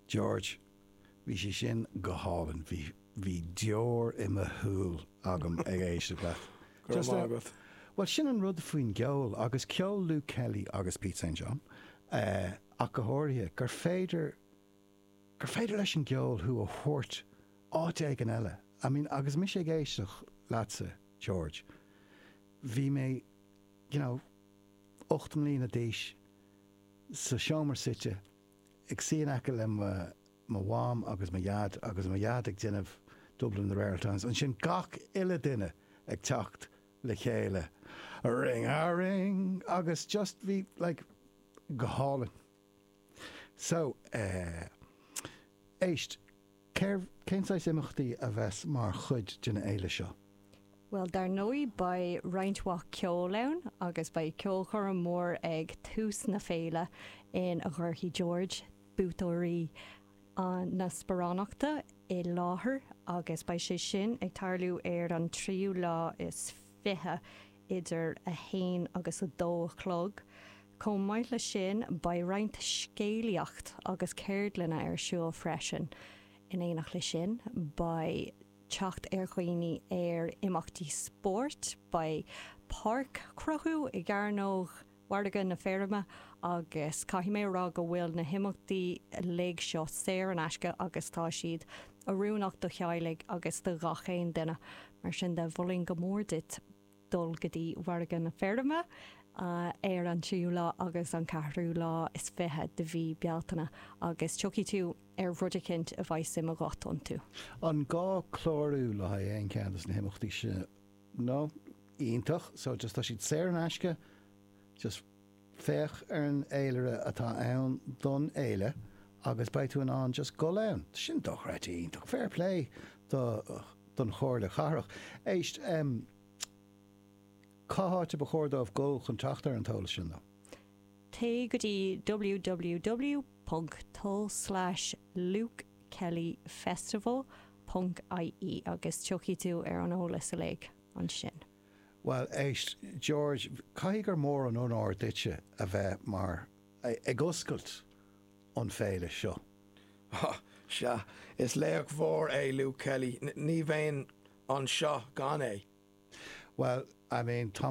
George, Bhí sé sin go hálainn, bhí, bhí deor i mo shúil agam ag éisteacht leat. Go raibh maith agat. Bhuel sin an rud faoin gceol agus ceol Luke Kelly agus Pete St John ach go háirithe, gur féidir, gur féidir leis an gceol thú a thabhairt áit éigin eile. I mean agus mise ag éisteacht leatsa George, bhí mé you know ocht mbliana d'aois sa seomra suite ag suí in aice le mo Mham agus mo Dhaid agus mo Dhaid ag déanamh Dublin in the Rare Times, ansin gach uile duine ag teacht le chéile ring a ring agus just bhí like go hálainn. So eh. éist. Cérbh, cén saghas imeachtaí a bheas mar chuid den fhéile seo? Bhuel dar ndóigh beidh roinnt mhaith ceoil ann agus beidh ceolchoirm mhór ag tús na féile in a gcuirfidh George buaiteoirí na sparánachta i láthair agus beidh sé sin ag tarlú ar an tríú lá is fiche idir 1 agus 2 a chlog. Chomh maith leis sin, beidh roinnt scéalaíocht agus ceardlanna ar siúl freisin. In éineacht leis sin, beidh teacht ar dhaoine ar imeachtaí spóirt, beidh páirc á cruthú i gCearnóg Mhargadh na Feirme agus caithfidh mé a rá go bhfuil na himeachtaí uilig seo saor in aisce agus tá siad oiriúnach do theaghlaigh agus do ghach aon duine. Mar sin de, mholfainn go mór duit dul go dtí Mhargadh na Feirme ar an tríú lá agus an ceathrú lá is fiche de mhí Bealtaine agus tiocfaidh tú ar rud eicint a bheidh suim agat iontu. An gá clárú le haghaidh aon cheann de na himeachtaí seo? no, iontach, so just tá siad saor in aisce, just féach ar an fhéilire atá ann don fhéile agus beidh tú in ann just gul ann. Sin dochreidte iontach, fair play don Chomhairle Chathrach. Éist, em, cá háit a ba chóir dóibh gul chun teacht ar an t-eolas sin, though? Téigh go dtí www.tul/lukekellyfestival.ie agus tiocfaidh tú ar an eolas uilig ansin. Bhuel, éist, George, caithfidh gur mór an onóir duitse a bheith mar. ag oscailt an fhéile seo. Há, sea, is laoch mhór é Luke Kelly, ní bheinn anseo gan é. Bhuel, I mean, tá.